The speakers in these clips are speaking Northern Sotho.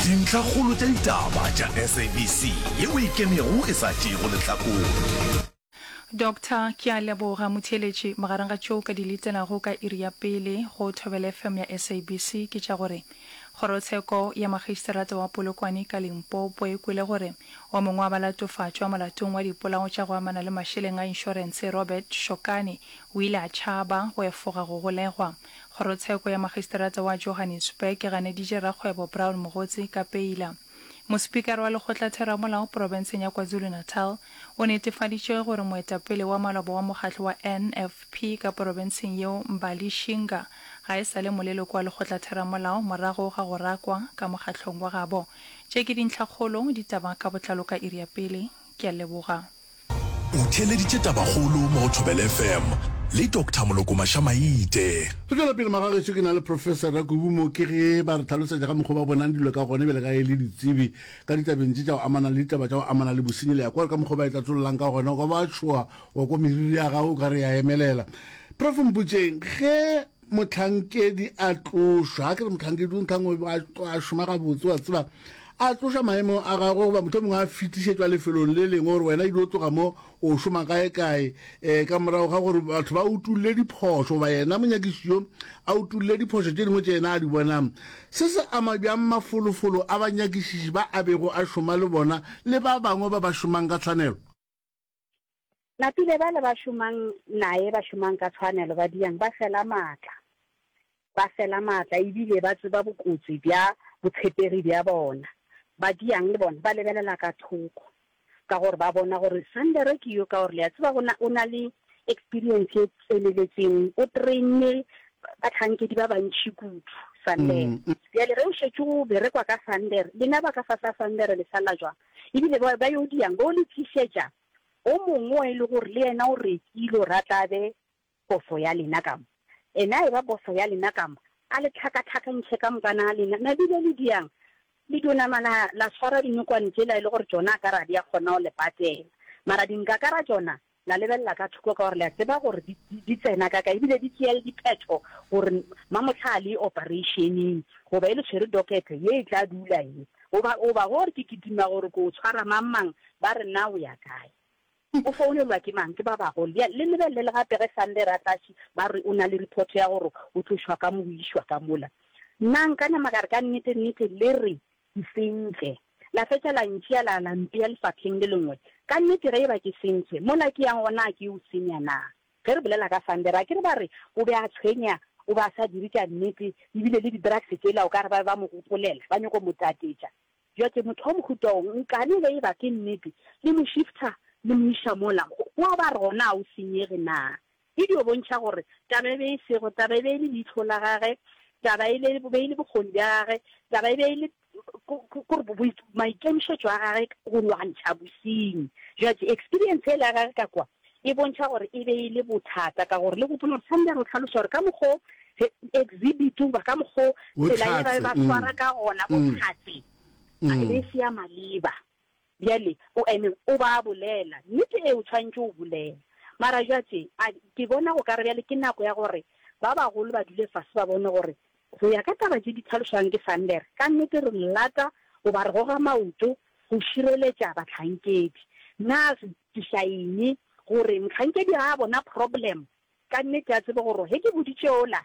Dintlhakgolo tša ditaba tša SABC ye o e kenego e sa tšeego lehlakore. Doctor, Ke a leboga motheeletši. Magareng ga tšeo ka di letelago ka iri ya pele go Thobela FM ya SABC ke tša gore Kgorotsheko ya Makgisterata wa Polokwane ka Limpopo e kwele gore o mongwe wa balatofatšwa molatong wa dipolao tša go amana le mašeleng a inšorense, Robert Shokane, o ile a tšhaba go efoga go golegwa. Kgorotsheko ya Magisterata wa Johannesburg e ganeditše rakgwebo Brown Mogotsi ka peila. Mosipikara wa Lekgotlatheramolao porofenseng ya KwaZulu-Natal o netefaditše gore moetapele wa maloba wa mokgatlo wa NFP ka porofenseng yeo Mbali Shinga ga e sa le moleloko wa Lekgotlatheramolao morago ga go rakwa ka mokgatlong wa gabo. Tše ke dintlhakgolo, ditaba ka botlalo ka iri ya pele. Ke a leboga. O theeleditše tabakgolo mo go Thobela FM le Doctor Moloko Mašamaite. Re tšwela pele magageso ke na le Professor Rakubu mo ke ge ba re tlhalosetša ka mokgwa ba bonang dilo ka gone bjale ka e le ditsebi ka ditabeng tše tša go amana le ditaba tša go amana le bosenyi le ya kwa ka mokgwa ba e tlatsololang ka gona go ba tšhoa wa kwa meriri ya gago o ka re ya emelela. Prof. Mpotšeng ge mohlankedi a tlošwa ga ke re mohlankedi o nthango a šoma gabotse wa tseba a tloša maemo a gagwe goba motho mongwe a fetišetšwa lefelong le lengwe gore wena ilo tloga mo o šoma kae kae um eh, ka morago ga gore batho ba utulle diphošo goba yena monyakiši yo a utulle diphošo tše dingwe tše yena a di bonang se se ama bjang mafolofolo a banyakišiši ba a bego a šoma le bona le ba bangwe ba ba šomang ka tshwanelo Napile bale ba šomang naye ba šomang ka tshwanelo ba diang ba fela maatla. Ba fela maatla e bile ba tseba bokotsi bja botshepegi bja bona. Ba diang le bona ba lebelela ka thoko ka gore ba bona gore Sandere ke yo ka gore le a tseba gona o na le experience e tseneletseng o trainne batlhankedi ba bantši kudu Sandere. Bjale ge o šetše o berekwa ka Sandere lena ba ka fasa Sandere le sala jwang? E bile ba, ba yo diang, ba yo le tlišetša o mongwe o e le gore le yena o rekile gore a tla be bofo ya lena ka mo. Ena a eba bofo ya lena ka mo, a le tlhakatlhakantšhe ka moka na lena. Na bile le diang? Le dio nama la, la swara dinokwane tšela e le gore tšona a ka re a di a kgona go le patela. Mara dinkakara tšona La lebelela ka thoko ka gore le a tseba gore di, di, di tsena ka kae, ebile di tšea le diphetho gore mamohla a le opereišeneng, goba e le tshwere dokete, ye e tla dula ye. Goba, goba gore ke kitima gore ke o tshwara mang-mang, ba re na o ya kae. O founelwa ke mang? Ke ba bagolo. Bjale, le lebelele gape ge Sunday ra tlatši, ba re o na le report ya gore o tlošwa ka mo, o išwa ka mola. Nna nka nama ka re, ka nnete-nnete, le re Ke sentše. La fetša la ntšea la la mpea lefapheng le lengwe. Ka nnete ge e ba ke sentše, mola ke yang gona a ke o senya na? Ge re bolela ka Sandero, a ke re ba re o be a tshwenya, o be a sa dire tša nnete, e bile le di-drugs tšela o ka re ba be ba mo gopolela, ba nyoko mo tatetša. Bjatše motho wa mohuta wo nkane ge e ba ke nnete, le mo shifter le mo iša mola go a ba re gona a o senyege na? Video bontšha gore taba e be e sego taba e be e le leihlo la gage, taba e be e le bokgoni bja gage, taba e be e le maikemišetšo a gage go lwantšha bosenyi. Jwale eksperiense yela ya gage ka kwa e bontšha gore e be e le bothata ka gore le gopola gore Sunday a re o hlaloša gore ka mokgo exhibit goba ka mokgo tsela ye ba be ba swara ka gona bohlatse e be e se ya maleba. Bjale, o eme, o ba a bolela, nnete e o tshwanetše go bolela. Mara bjatše, a, ke bona go ka re bjale ke nako ya gore ba bagolo ba dule fase ba bone gore, go ya ka taba tše di tlhalošwago ke Sander, ka nnete re lata goba re goga maoto go šireletša bahlankedi. Na re tliša eng? Gore mohlankedi ga a bona problem, ka nnete a tsebe gore ge ke boditše yola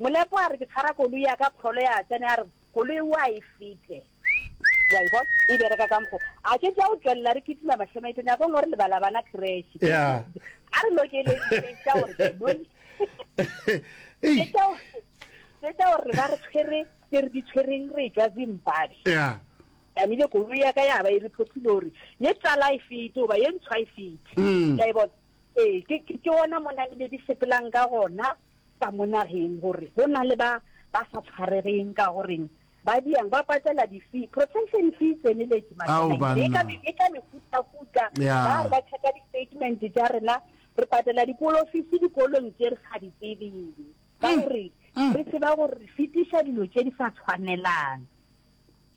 Molepo a re ke tshwara koloi ya ka Kgolo ya tsene a re koloi wa e fete wa e bona e bereka ka mokgo a ke tša o tšwelela re kitima mahlemaite nyakong gore lebala bana cresh a re lokeletša gore bone tšetša gore ba re tshwere tse re di tshwereng re tšwa zimbabwe tlamile koloi ya ka ya ba e re phothile gore ye tsala e fete goba ye ntshwa e fete ka e bona ee ke ona mo namile di sepelang ka gona ba mo nageng gore go na le ba ba sa tshwaregeng ka go reng ba diang ba patela di-fee protection fee e tseneletše mašaleng e ka mefutafuta ba re ba check-a di-statement tša rena re patela dipolofisi dikolong tše re sa di tsebeng ka gore re tseba gore re fetiša dilo tše di sa tshwanelang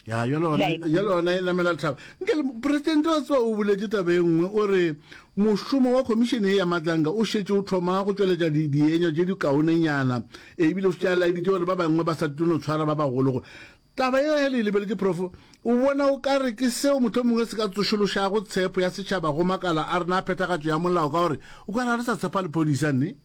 ya ya lona e namela thaba nke presidente wa tseba o boletse taba e nngwe o re mošomo wa khomišene e ya matlanga o šetše o thoma go tšweletša dienywa tše dikaonenyana ebile o šetše a laeditše gore ba bangwe ba sa tlono tshwara ba bagologo taba e ya le lebeletse profo o bona o ka re ke seo motho mongwe se ka tsošološago tshepo ya setšhaba go makala a rena a phethagatšo ya molao ka gore o ka re ga re sa tshepa lephodisa nne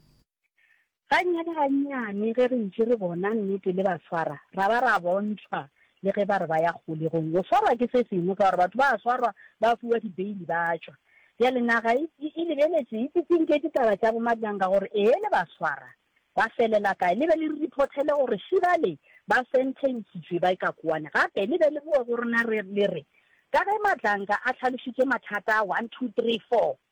Gannyane-gannyane ge re ntše re bona nnete le ba swara, ra ba ra bontšhwa le ge ba re ba ya kgolegong. Go swarwa ke se sengwe ka gore batho ba a swarwa, ba fiwa dibeili ba a tšwa. Bjale naga e, e, e lebeletše, e tsitsinke ditaba tša bomatlanka gore ee le ba swara, ba felela kae. Le be le re riphothele gore še bale ba sententšitšwe ba ikakuane. Gape le be le boe go rena re, le re, Ka ge matlanka a hlalošitše mathata a one, two, three, four,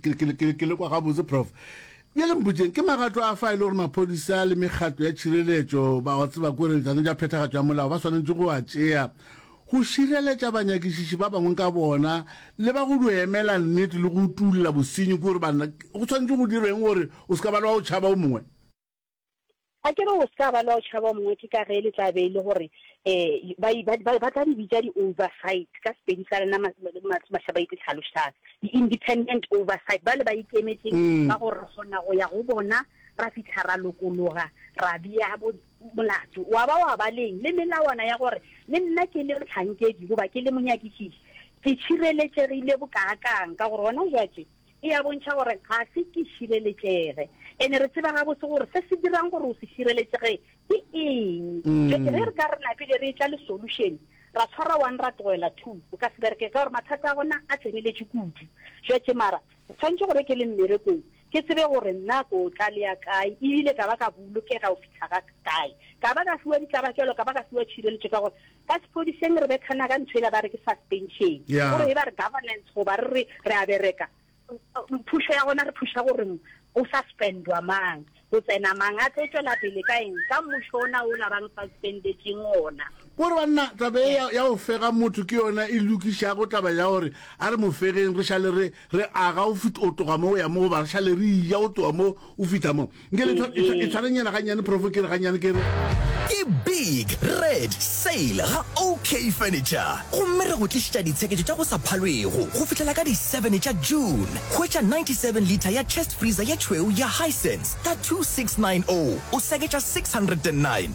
ke le kwa gabotse prof bjale mpotšeng ke magato a fa e le gore maphodisa le mekgatlo ya tšhireletšo ba wa tseba kore tsano ja phethagatšo ya molao ba swanetše go a tšea go šireletša banyakišiši ba bangwe ka bona le ba go di emela nnete le go tulla bosenyi kore bana go tshwanetse go direng gore o se ka ba le wa go tšhaba o mongwe A ke re o se ka ba le wa go tšhaba o mongwe ke ka ge le tla be e le gore um ba, ba, ba, ba tla di bitša di-oversight, ka Sepedi sa rena ma, ma, mahla ba itse tlhalošang, di-independent oversight, bale ba ikemetseng ba gore re kgona go ya go bona ra fihla ra lokologa ra bea bo, molato wa ba wa ba leng le melawana ya gore le nna ke le mohlankedi goba ke le monyakišiši ke tšhireletšegile bokaakang ka gore gona bjatše e a bontšha gore ga se ke šireletšege. Ene re tseba gabotse gore se se dirang gore o se šireletšege ke eng. Jwale ge re ka re napile re etla le solution, ra tshwara one ra tlogela two, o ka se bereke ka gore mathata a gona a tseneletše kudu. Jwale mara ke tshwanetše gore ke le mmerekong ke tsebe gore nna ko tla le ya kae e bile ka ba ka bolokega go fihla ga kae. Ka ba ka fiwa ditlabakelo, ka ba ka fiwa tšhireletšo ka gore Ka sephodiseng re bethana ka ntho ela ba re ke suspension. Yeah. Gore e ba re governance goba re re re a bereka uh, phušo ya gona re phuša gore go suspendwa mang go tsena mang a tlo tšwela pele ka eng ka mmušo ona o la bang suspendetseng ona. Kore banna taba e ya, ya go fega motho ke yona e lokišago taba ya gore a re mo fegeng re šale re Re aga o fit, o tloga mo o ya mo, goba re šale re ija o tloga mo o fitha mo. Nke le tshwa, e tshwa, e tshwarenyana gannyane, Profo, ke re gannyane, ke re. Ke Big Red Sale ga OK Furniture, gomme re go tlišitša ditsheketšo tša go sa phalwego go fihlela ka di seven tša June. Hwetša ninety seven litre ya chest freezer ye tšhweu ya Hisense ka two six nine zero, o seketša six hundred and nine.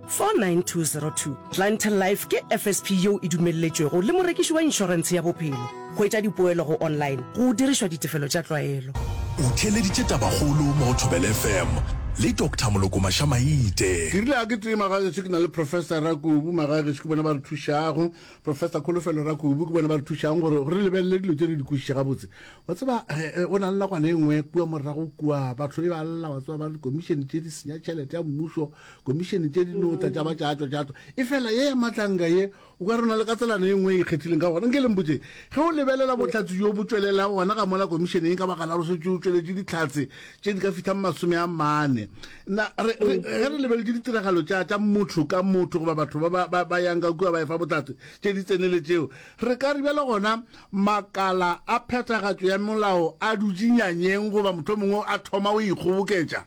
49202 Clientele Life ke FSP yeo e dumelletšwego le morekiši wa inšorentshe ya bophelo. Hwetša dipoelo go online go dirišwa ditefelo tša tlwaelo. O theeleditše Tabakgolo mo go Thobela FM le Doctor Molokomasha Maite. Ke rile ga ke tee magageso ke na le Professor Rakubu. Magageso ke bona ba re thušago. Professor Kholofelo Rakubu ke bona ba re thušago gore re lebelele dilo tše re di kwešiše gabotse. Wa tseba eh, go na le nakwana e nngwe kua morago kua batho e ba lla, wa tseba ba re dikomišene tše di senya tšhelete ya mmušo. Komišene tše di no tla tša ba tšatšwa tšatšwa. Efela ye ya Matlanga ye, o ka re o na le katselano ye nngwe e ikgethileng ka gona. Nke le mpotše, ge o lebelela bohlatse bjo bo tšwelelago gona ka mola Komišene yeng ka baka la go šetše o tšweletše dihlatse tše di ka fihlang masome a mane, na re, re, ge re lebeletše ditiragalo tša, tša motho ka motho goba batho ba ba, ba, ba yang ka kua ba efa bohlatse tše di tseneletšego, re ka re bjalo gona makala a phethagatšo ya molao a dutše nyanyeng goba mohlomongwe a thoma go ikgoboketša?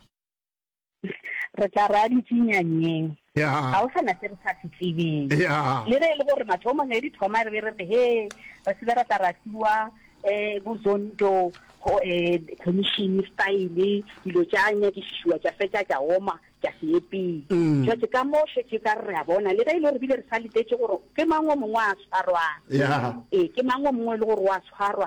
Re tla re a di tšinya nyeng? Ya. Ga go sa na se re sa se tsebeng. Ya. Le ge e le gore mathomong ge di thoma re be re re, Hee, re se be ra tla ra fiwa um bo Zondo go um commission style, dilo tša nyakišišiwa tša fetša tša oma, tša se ye pele. Jwale ka mo šetše e ka re re a bona, le ge e le gore re bile re sa letetše gore ke mang o mongwe a tshwarwang. Ya. Ee, ke mang o mongwe e le gore o a tshwarwa.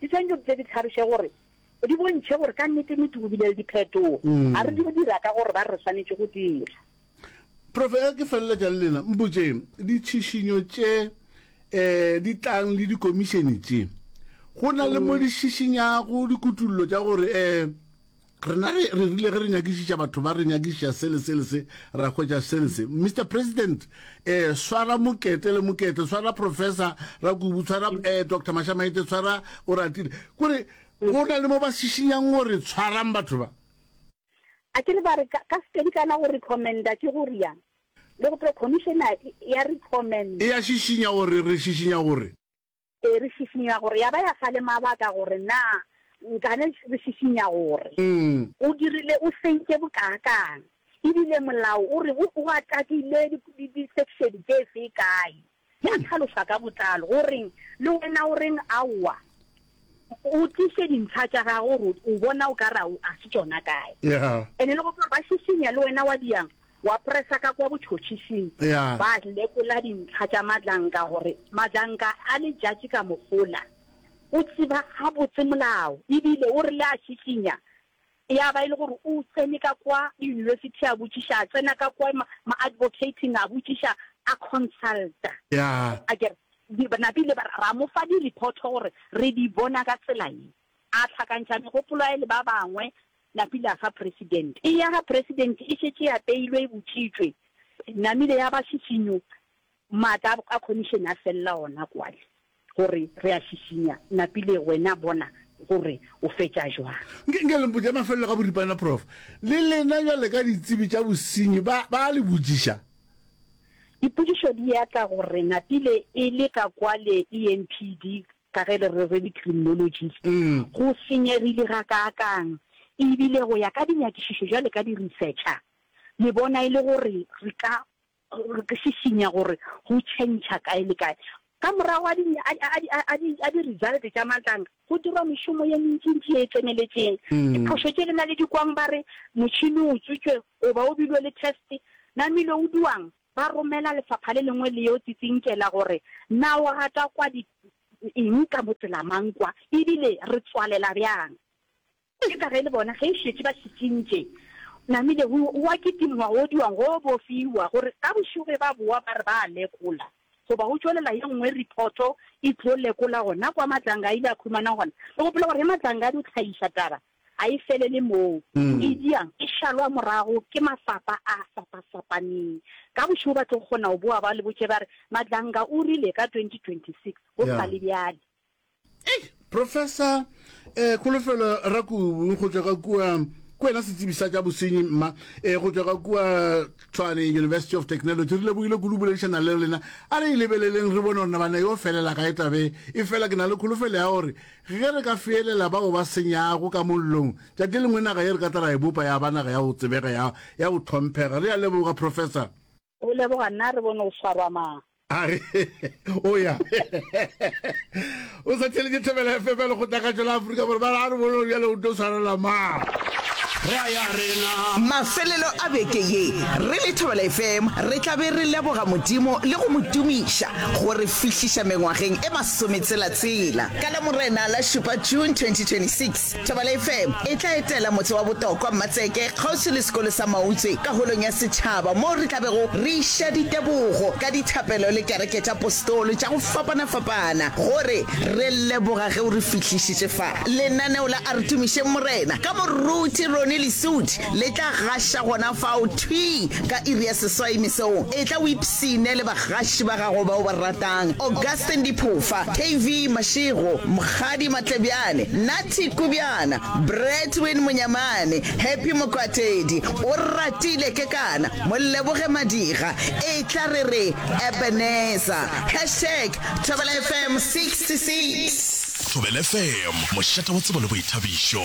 Di swanetše go tle di tlhaloše gore, di bontšhe gore ka nnete-nnete go bile le diphetogo, a re di go dira ka gore ba re re swanetše go dira. Prof. Ge ke feleletša le lena, mpotšeng, ditšhišinyo tše um di tlang le dikomišene tše, go na le mo di šišinyago dikutollo tša gore um rena re re rile ge re nyakišiša batho ba re nyakišiša se le se le se ra hwetša se le se mr president um swara mokete le mokete swara professor rakubu swara um eh, dr mashamaete swara o ratile kore go na le mo ba šišinyang gore tshwarang batho ba a ke re ba re ka sepedi kana go recommenda ke go riang le go pre commissioner ya recommend e ya šišinya gore re šišinya gore Ee, re šišinya gore ya ba ya fa le mabaka gore na nkane re šišinya gore. O dirile o sentše bokaakang, e bile molao o re o o atakile disekšene tše fe, kae. Ya tlhaloša ka botlalo gore le wena o reng aowa, o tliše dintlha tša gago gore o bona o ka re a se tšona kae. Ene le gore ba šišinya le wena wa diang Wa presa ka kwa botšhotšhising, ba lekola dintlha tša matlanka gore matlanka a letšatši ka mohola. O tseba gabotse molao e bile o rile a šišinya. Ya ba e le gore o tsene ka kwa yunibesithi a botšiša, a tsena ka kwa ma-advocating a botšiša, a consulta. A ke re, ba napile ba re, ra mo fa di-report gore re di bona ka tsela ye. A hlakantšha megopolo ya le ba bangwe, Napile a fa President. Eya ga President e šetše e apeilwe, e botšitšwe, namile ya ba šišinyo. Maatla a Commission a felela gona kwale, gore re a šišinya. Napile, wena bona gore o fetša bjang. Nke, nke le mpotša mafelelo ka boripana, Prof. Le lena bjale ka ditsebi tša bosenyi ba, ba a le botšiša. Dipotšišo di atla gore Napile e le ka kwale EMPD Ka ge le re re di-criminologist, go senyegile gakaakang! Ebile go ya ka dinyakišišo bjale ka di-researcher, le bona e le gore re ka šišinya gore go tšhentšha kae le kae. Ka morago a di, a, a, a, a di, a di-result tša matlana, go dirwa mešomo ye mentsintsi ye e tseneletšeng. Diphošo tše le na le di kwang ba re motšhini o utswitšwe goba o bilwe le test, namile o duwang? Ba romela lefapha le lengwe le yo tsitsinkela gore, Na o rata kwa di eng ka motsela mang kwa, e bile re tswalela bjang? Ke ka ge le bona ge e šetše ba šišintše, namile go wa kitimngwa go odiwang go bofiwa, gore ka bošego ge ba bowa ba re ba a lekola, goba go tšwelela ye nngwe ripoto e tlo lekola gona kwa Matlanga a ile a khumana gona. Ke gopola gore ge Matlanga a di tlhaiša taba, ga e felele moo. E dia, e šalwa morago ke mafapa a fapafapaneng. Ka bošego ba tlo kgona go boa ba le botše ba re, Madlanga o rile ka 2026 go sa le bjale. Ei, Professor eh, Kholofelo Rakubu go tšwa ka kua, ke wena setsebi sa tša bosenyi mma, eh, go tšwa ka kua Tshwane University of Technology. Re lebogile kudu boledišana le lena. A re e lebeleleng re bone gore na bana yo felela kae tabe e fela. Ke na le kholofelo ya gore Ge re ka feelela bao ba senyago ka mollong, tšatši lengwe naga ye re ka tla ra e bopa ya ba naga ya go tsebega, ya, ya go tlhomphega. Re a leboga, Professor. O leboga nna, re bone o swarwa mang. A re, O ya. O sa theeletše Thobela FM ya Lekgotlagatšo la Afrika Borwa. Ba re, A re bone gore bjale o tlo swarelwa mang. Re a ya rena. Mafelelo a beke ye, re le Thobela FM re tla be re leboga Modimo le go mo tumiša go re fihliša mengwageng e masometshela-tshela. Ka Lamorena la šupa, June 2026, Thobela FM e tla etela motse wa Botokwa, Mmatseke, kgauswi le sekolo sa Mautse ka Holong ya Setšhaba moo re tla bego re iša ditebogo ka dithapelo le Kereke tša Postolo tša go fapana-fapana go re re leboga ge o re fihlišitše fa. Lenaneo la A Re Tumišeng Morena ka moruti Ronnie Lesuthi Le tla gaša gona fao thwi ka iri ya seswai mesong. Etla o ipshine le bagaši ba gago ba o ba ratang, Augustine Diphofa, KV Mashego, Mokgadi Matlebjane, Natty Kubjana, Bretwin Monyamane, Happy Mokwatedi, Oratile Kekana, Moleboge Madiga, Etla re re Ebenezer. Hashtag Thobela FM 66. Thobela FM, mošate wa tsebo le boithabišo.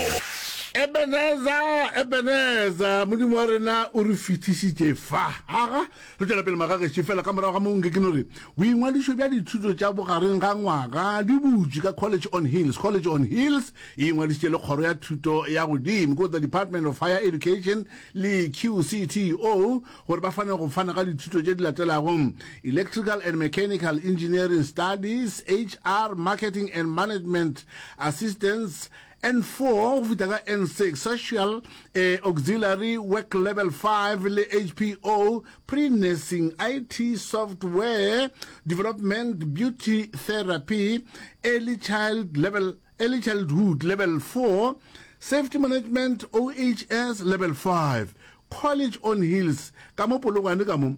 Ebeneza, Ebeneza, Modimo wa rena o re fihlišitše fa. Aga, re tšwela pele magagešo, fela ka morago ga moo nke ke no re, boingwadišo bja dithuto tša bogareng ga ngwaga di butšwe ka College on Hills. College on Hills e ingwadišitše le Kgoro ya Thuto ya Godimo, ko the Department of Higher Education le QCTO, gore ba fane go fana ka dithuto tše di latelago, Electrical and Mechanical Engineering Studies, HR, Marketing and Management Assistance, N4 go fihla ka N6, Social eh, Auxiliary Work Level 5 le HPO, Pre-Nursing IT Software Development Beauty Therapy, Early Child Level Early Childhood Level 4, Safety Management OHS Level 5, College on Hills, ka mo Polokwane ka mo.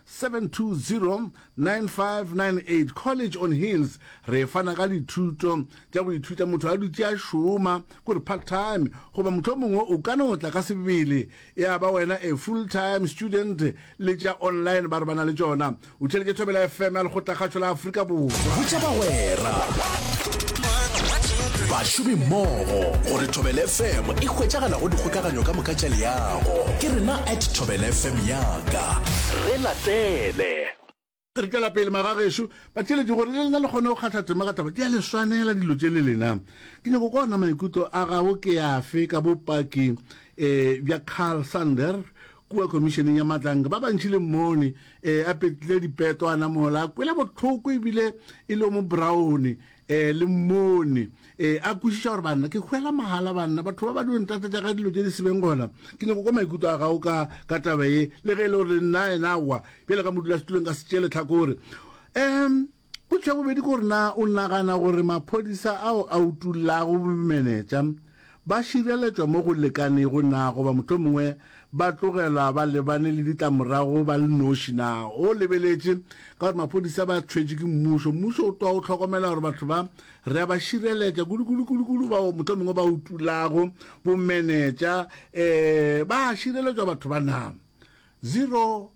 7209598 College on Hills re fana ka dithuto tša go ithuta motho a dutše a šoma, kore part time, goba mohlomongwe o ka no tla ka sebele ya ba wena a full time student le tša online ba re ba na le tšona. O theletše Thobela FM ya Lekgotlakgašo la Afrika. Afrika Borwa. Botša bagwera, bašomi mmogo gore Thobela FM e hwetšagala go dikgokaganyo ka moka tša leago. Ke rena at Thobela FM yaka. Re latele. Re tšwela pele magagešu batšweletši gore le lena le kgone go kgatha tema ka taba di a le swanela dilo tše le lena ke nyako kwa ona maikutlo a gago ke afe ka bopaki um bja carl sander Kua Khomišeneng ya Matlanka, ba bantši le mmone e a petlile dipeto, a namola, a kwele bohloko e bile e le o mo braone, e le mmone e a kwešiša gore, Banna, ke hwela mahala, banna, batho ba ba di ntate tša ga dilo tše di sebeng gona. Ke nyako kwa maikuto a gago ka, ka taba ye, le ge e le gore le nna yena wa, bjale ka modulasetulong ka se tšee lehlakore. Um. Potšo ya bobedi ke gore na o nagana gore maphodisa ao a utollago bomenetša ba šireletšwa mo go lekanego na goba mohlomongwe ba tlogelwa ba lebane le ditlamorago ba le noši? Na o lebeletše ka gore maphodisa ba tshwetšwe ke mmušo? Mmušo o tloga o hlokomela gore batho ba re a ba šireletša kudu-kudu-kudu-kudu bao mohlomongwe ba utollago bomenetša um ba šireletšwa batho ba na? Zero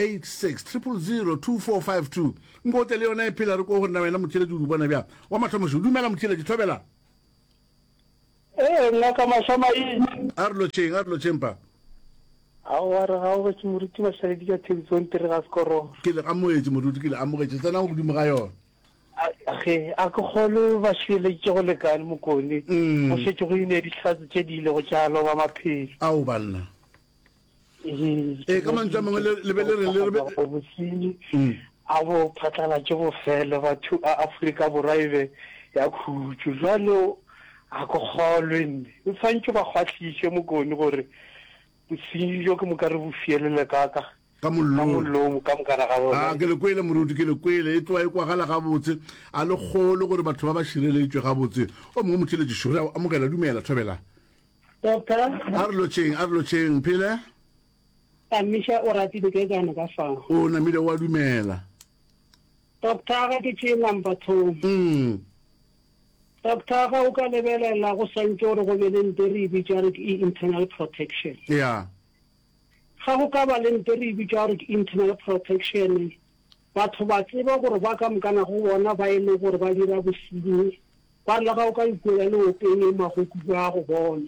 86000245 Nkote le yona e phela re ko go nna wena motšeletši o di bona bjang wa mathomošo dumela motšeletši thobela. Ee ngaka Mašamaitse. A re lotšheng a re lotšheng pa. Aowa re gaogetše moruti Mashaledi ka thedi tsonte re ga se kororo. Ke le amogetše moruti ke le amogetše tsenang godimo ga yona. Ge a ke kgolwe ba šireleditše go lekane mokone go šetše go ine dihlatse tše di ilego tša loba maphelo. Ao banna. ee ka mantswe a mangwe le be le re le rebe bosenyi mm. a bo phatlalatše bofele batho a aforika borwa e be ya khutšo jwale a ko kgolwe nne o tshwanetse ba kgwahliše mokoni gore bosenyi jo ke moka re bo fielele kaka ka mollomo ka mokana ga bona ah, ke le kwele moruti ke le kwele e tloa e kwagala gabotse a le kgolo gore batho ba ba šireletšwe gabotse o mongwe motšheletše šore amogela dumela thobela Doctor. A re lotšeng, a re lotšeng, Mphele. A Misha o ratile ke kana ka fa. O namile wa dumela. Doctor ga ke tšee number two. Mm. Doctor ga o ka lebelela go swantše gore go be le nte re e bitša gore ke internal protection. Yeah. Ga go ka ba le nte re e bitša gore ke internal protection. Batho ba tseba gore ba ka mokana go bona ba e le gore ba dira bosenyi ba re le ga o ka ikwela leopeng e magoku ba go bona.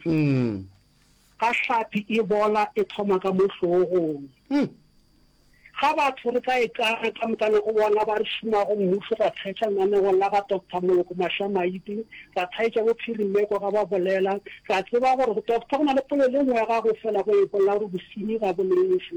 Ga hlapi e bola e thoma ka mo hlogong. Ga batho re ka e kara ka mokana go bona ba re šomago mmušo ra thaetša lenanegong la ga Doctor Moloko Mašamaite, ra thaetša bo Phirimeko ga ba bolela, ra tseba gore go Doctor go na le polelo e nngwe ya gago fela go e bolela gore bosenyi ga bo lefe.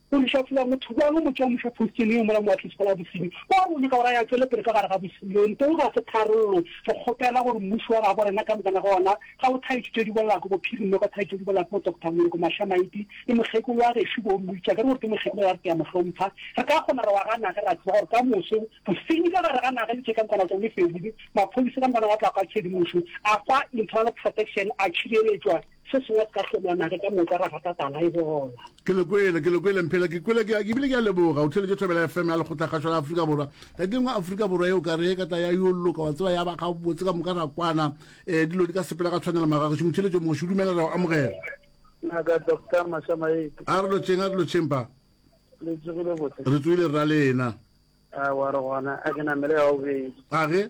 Go le šafola motho bjang o mo tšea o mo fa phostene yeo mola moatlisi wa Labosedi wa rona ka gore a ya tšwele pele ka gare ga bošilo? Ntoo ga se tharollo. Re kgopela gore mmušo wa gabo rena ka moka na gona ga o thaetše tše di bolago bophirimelo ka thaetše di bolago bo Doctor Moloko Mahlamaiti le mokgekolo wa gešo bo Mmitša ke re gore ke mokgekolo wa re ke a mo hlompha re ka kgona re wa ga nage ra tseba gore ka moso bosenyi ka gare ga nage le tše ka nkwana tsone fedile maphodisa ka nkwana wa tla kwa tšhedimošo a kwa internal protection a tšhireletšwa Se sengwe se ka hlomana ge ka moka ra rata tala e bola. Ke le kwele, ke le kwele Mphela, ke kwele ke, ebile ke a leboga. O theletše Thobela FM ya Lekgotlakgašo la Afrika Borwa. Ka ke ngwe Afrika Borwa yeo ka re ka tla ya yo loka, wa tseba ya ba gabotse ka moka ra kwana. Eh, dilo di ka sepela ka tshwanelo magagešo. Motheletšo moši, dumela ra o amogela. Ngaka Doctor Mashamaetsi. A re lotšheng, a re lotšheng pa. Le tsogile botse? Re tsogile rra le ena. A wa re gona, a ke namele ya bobedi. A ge?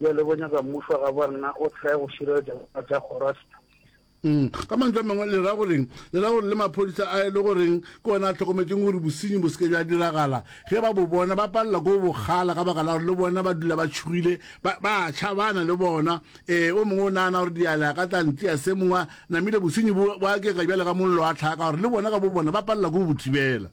Bjale bo nyaka mmušo wa gabo rena o hlae go šireletša dinaga tša Khorasita. Mm. Ka mantswe a mangwe, le ra goreng? Le ra gore le maphodisa a e le goreng ke ona a tlhokometšeng gore bosenyi bo se ke bja diragala, ge ba bo bona ba palela ko bo kgala ka baka la gore le bona ba dula ba tšhogile, ba, ba a tšhabana le bona. Ee, o mongwe o nagana gore dialea ka tla ntsea se mongwe a namile, bosenyi bo, bo akega bjale ka mollo wa tlhaka gore le bona ka bo bona ba palela ko go bo thibela.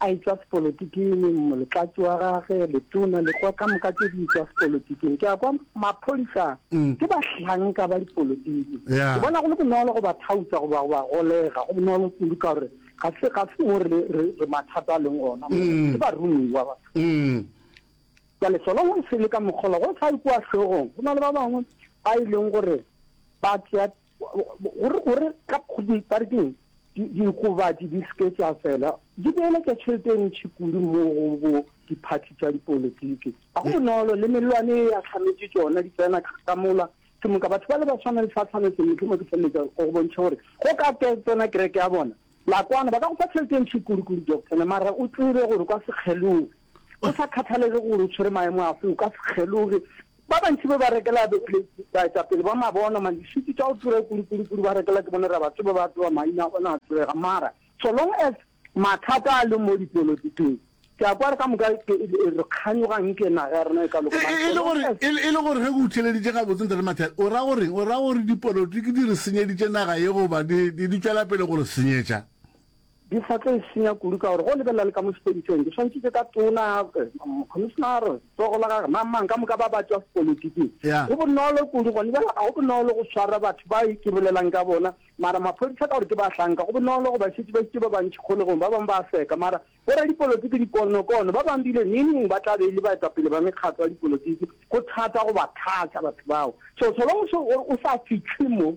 A etšwa sepolotiking, moletlatši wa gage, letona, lekwa ka moka tše di etšwa sepolotiking. Ke a kwa maphodisa ke bahlanka ba dipolotiki. Ke bona go le bonolo go ba thautša goba go ba golega. Go bonolo kudu ka gore ga se ga se mo re re re mathata a leng ona. Ke barumiwa ba. Jwale sona go se le ka mokgolo go sa ikwa hlogong. Go na le ba bangwe ba e leng gore ba tsea gore gore ka parekeng diokobatši di seke tsa fela di beeletša tšhelete e ntšhi kudu mo go bo diphathi tša dipolotiki ga go bonolo le melwane e ya tlhametše tsona di tsena ka mola ke moka batho ba le ba tshwana le sa tshwanetse motlho mo ke feleletsa go bontšha gore go ka ke tsena kereke ya bona la kwana ba ka go fa tšhelete e ntšhi kudu kudu doctor mara o tsebe gore kwa sekgelong Go sa kgathalege gore o tshwere maemo afe, o ka se kgeloge. Ba bantši be ba rekela baetapele ba mabona malešiti tša go tura kurikurukudu, ba rekela ke bone rabatsebe ba tseba maina a bona a tsebega. Mara so long as mathata a le mo dipolotikeng, ke a kwa re ka moka re kganyoga nke naga ya rena e ka loka. Mara so long as- E le gore ge go utlheleditše gabotse Ntate Mathale, o ra go reng? O ra gore dipolotiki di re senyeditše naga ye goba di tšwela pele go re senyetša? Di sa tlo e senya kudu ka gore go lebelela le ka mo sepediseng di swantšitše ka tona, commissioner, tsogo la gage, mang mang ka moka ba ba tšwa sepolitiking. Yeah. Go bonolo kudu gone bjale, ga go bonolo go swara batho ba e ke bolelang ka bona, mara maphodisa ka gore ke bahlanka go bonolo go ba šetše ba itše ba bantši kgolegong, ba bangwe ba a seka, mara boradipolitiki dikonokono ba bangwe bile neng ba tla be e le baetapele ba mekgatlo ya dipolitiki, go thata go ba thatša batho bao. So so long so o sa fihle mo.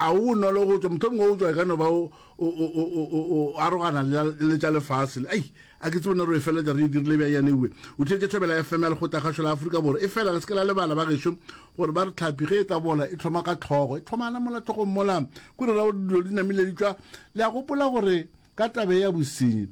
A go bonolo go tšwa, mohlomongwe go tšwa e ka no ba o arogana le tša lefase le, ai, a ke tsebone re e feletša re e dirile bja yanewe. O thetše thobela ya FM ya Lekgotlakgašo la Afrika Borwa. E fela le se ke la lebala, bagešo, gore ba re tlhapi ge e tla bola e thoma ka tlhogo, e thomana mola tlhogong mola, kore ra gore dilo di namile di tšwa. Le a gopola gore ka taba ye ya bosenyi,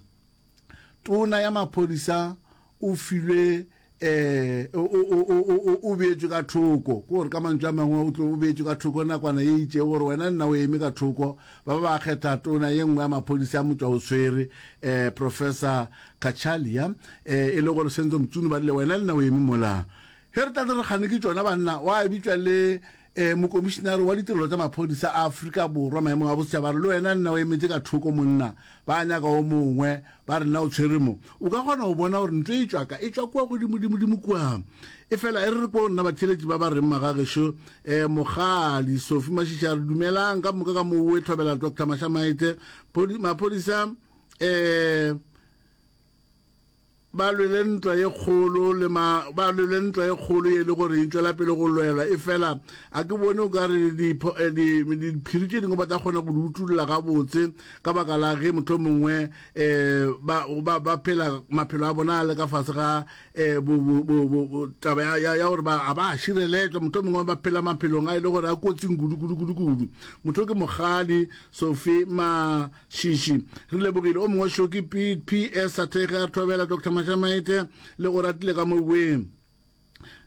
Tona ya maphodisa o filwe o beetšwe ka thoko ko gore ka mantšu a mangwe o tlo o beetšwe ka thoko nakwana ye itše gore wena nna o eme ka thoko ba ba ba kgetha tona ye nngwe ya maphodisa a motšwa o swere um professor kachalia um e le gore senzo mtsunu ba rile wena le nna o eme mola ge re tlale re kgane ke tšona banna wa bitšwa le Ee, Mokomišinare wa Ditirelo tša Maphodisa a Afrika Borwa maemong a Bosetšhaba a re le wena nna o emetše ka thoko monna, ba nyaka o mongwe, ba re nna o tshwere mo. O ka kgona go bona gore ntlo e tšwa ka, e tšwa kua godimodimodimo kua. Efela e re re kwong nna batheeletši ba ba reng magagešo, ee, Mokgadi Sophie Mashishi a re dumelang, ka moka ka moo o e tlhobela Doctor Mashamaite, Phodi, Maphodisa, ee, ba lwele ntwa ye kgolo le ma ba lwele ntwa ye kgolo ye e le gore e tšwela pele go lwelwa e fela a ke bone o ka re eh, diphiri tše dingwe ba tla kgona go di utulla gabotse ka baka la ge motlho mongwe um ba phela maphelo a bona a le ka fase ga um taba ya gore ga ba a šireletšwa motlho mongwe ba phela maphelong a e le gore a kotsing kudu kudu kudu kudu motho ke mogadi sofe ma Shishi. Re lebogile o mongwe šo ke Pete PS a thege a thobela Dr. Mashamaete le go ratile ka moweng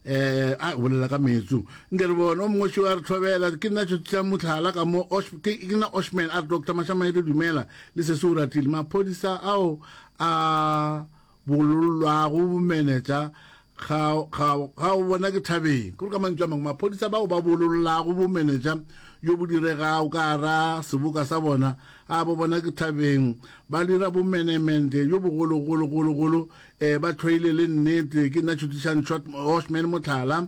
eh a bolela ka metsu nke re bone o mongwe a re thobela ke nna tšo tša motlhala ka mo ke nna oshman a re doctor mashamaete dumela le se se o ratile maphodisa ao a bolollwago bomenetša ga, ga, ga o bona ke thabeng. Ke gore ka mantšu a mangwe, maphodisa bao ba bolollago bomenetša yo bo diregago ka gara seboka sa bona, a bo bona ke thabeng, ba dira bomenemente yo bogologologologolo, ee, ba thweile le nnete. Ke nna Tšhutišang Short, Hoshman Motlhala,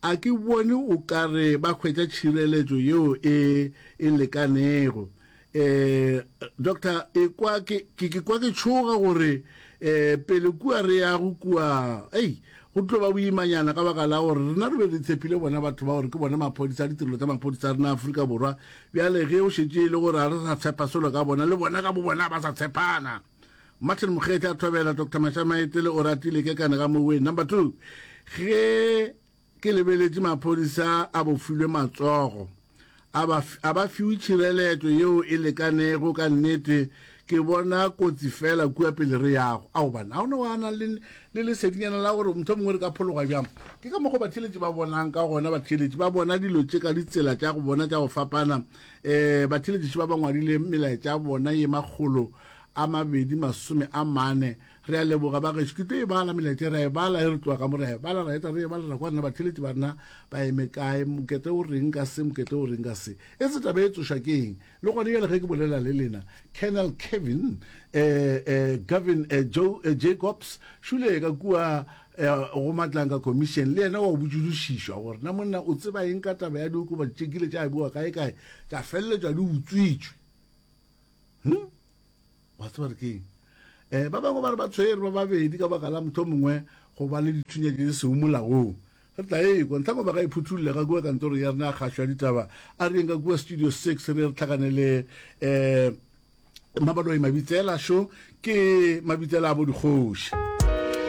A ke bone o ka re ba hwetša tšhireletšo yeo e e lekanego. Um, doctor, ekwa ke, ke, ke kwa ke tšhoga gore um pele kua re yago kua, ei, go tlo ba boimanyana ka baka la gore rena re be re tshepile bona batho ba gore ke bona maphodisa, ditirelo tsa maphodisa a rena Afrika Borwa. Bjale ge o šetše e le gore ga re sa tshepa selo ka bona, le bona ka bobona ba sa tshepana. Martin Mokgethi a thobela Dr. Mashamaetele o ratile ke kane ga moweng. Number two, ge ke lebeletše maphodisa a bofilwe matsogo a ba fiwe tšhireletšo yeo e lekanego ka nnete ke bona kotsi fela kua pele re yago a gobane ga o ne wa nang le lesedinyana la gore motho mongwe re ka phologa bjang ke ka mogo batheletši ba bonang ka gona batheletši ba bona dilo tše ka ditsela tša go bona tša go fapana um batheeletši ba ba ngwadile melaetša ya bona ye makgolo a mabedi masome a mane re a leboga bageso ke tlo e bala melaetša re a e bala e re tloga ka mo re a e bala ra eta re e bala ra kwa rena batheeletši ba rena ba eme kae mokete o reng ka se mokete o reng ka se e se taba e tsoša ke eng le gone jale ge ke bolela le lena colonel kevin um um gavin um joe jacobs šule ka kua Eya go Matlanka Commission, le yena wa go botšilošišwa gore na monna o tseba eng ka taba ya diokobatši tše kile tša bewa kaekae tša feleletšwa di utswitšwe. Hm? Wa tseba re keng? Eh, ba bangwe ba re ba tshwere ba babedi ka baka la motho o mongwe go ba le dithunya tše di sego molaong. Re tla ekwa, ntlhangwe ba ka e phuthulela kua kantorong ya rena ya kgašo ya ditaba, a re yeng ka kua Studio Six re ye re tlhakane le eh, Mmabaloi Mabitsela šo ke Mabitsela a bo dikgoši.